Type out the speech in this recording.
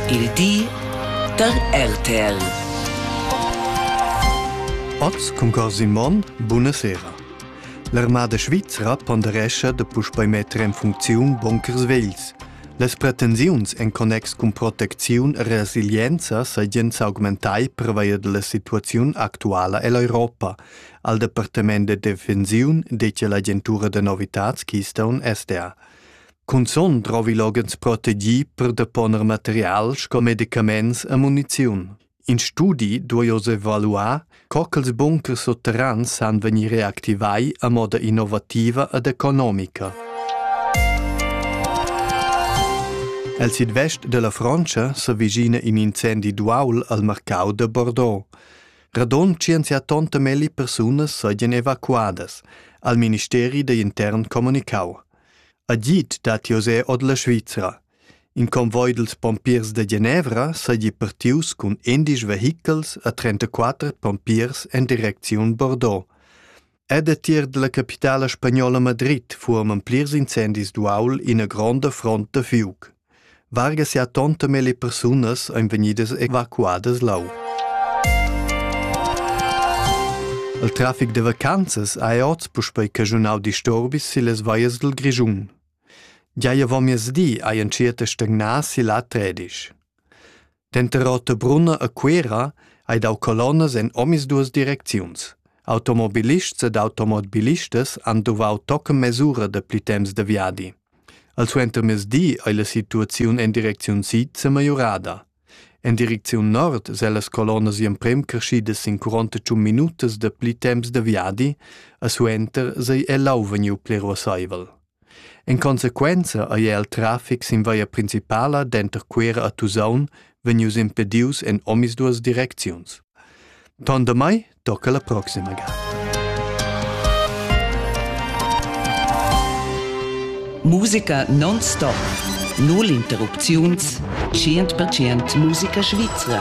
Il di da RTL. Oz cun cor Simon, buna sera. L'armada svizra ponderescha da puspei metter en funcziun bunkers vegls. Las pretensiuns en connex cun protecziun e resilienza seigien s'augmentai pervia della situaziun actuala ell'Europa, al Departament de Defensiun dettia l'agentura de novitats Keystone SDA. Cunzun drovi loghens protegì per deponer material sco medicaments e muniziun. In studi duai oz evaluar, co ch'ils bunkers sutterrans san vegnir reactivai a moda innovativa ed economica. El sidvest della Frontscha s'avvicina in incendi d'uaul al marcau de Bordeaux. Radon 180 melli persunas sajan evacuadas, al ministeri da intern comunicau. Agid dat José ord la Svizra. In convoi dels pompiers de Genevra seigi partius cun endisch vehichels a 34 pompiers en direcziun Bordeaux. Ed a tier della capitala spagnola Madrid furono plirs incendis d'uaul ina gronda front da fiuc. Varga sia tonta melle persunas ein vegnidas evacuadas lau. Il trafic de vacanzas ha oz puspei caschunau disturbis sillas vallas dil Grischun. Gia avon miezdi hai entschiet a stagnar si la tredisch. Denter Rotebrunna e Cuera ei dau colonnas en omisduas direcziuns. Automobilists ed automobilistas han duvau tochen mesura dapli temps de viadi. Al suentermezdi ei la situaziun en direcziun sid semajorada. En direcziun nord se las colonnas emprem creschidas sin 41 minutas dapli temps de viadi, a suenter sei el lau vegniu pli ruasseivel. En consequenza ei el traffic sin via principala denter Cuera a Tusaun vegnius impedius en omisduas direcziuns. Ton damai tocca la proxima ga. Musica non-stop. Null interrupziuns. 100% musica svizra.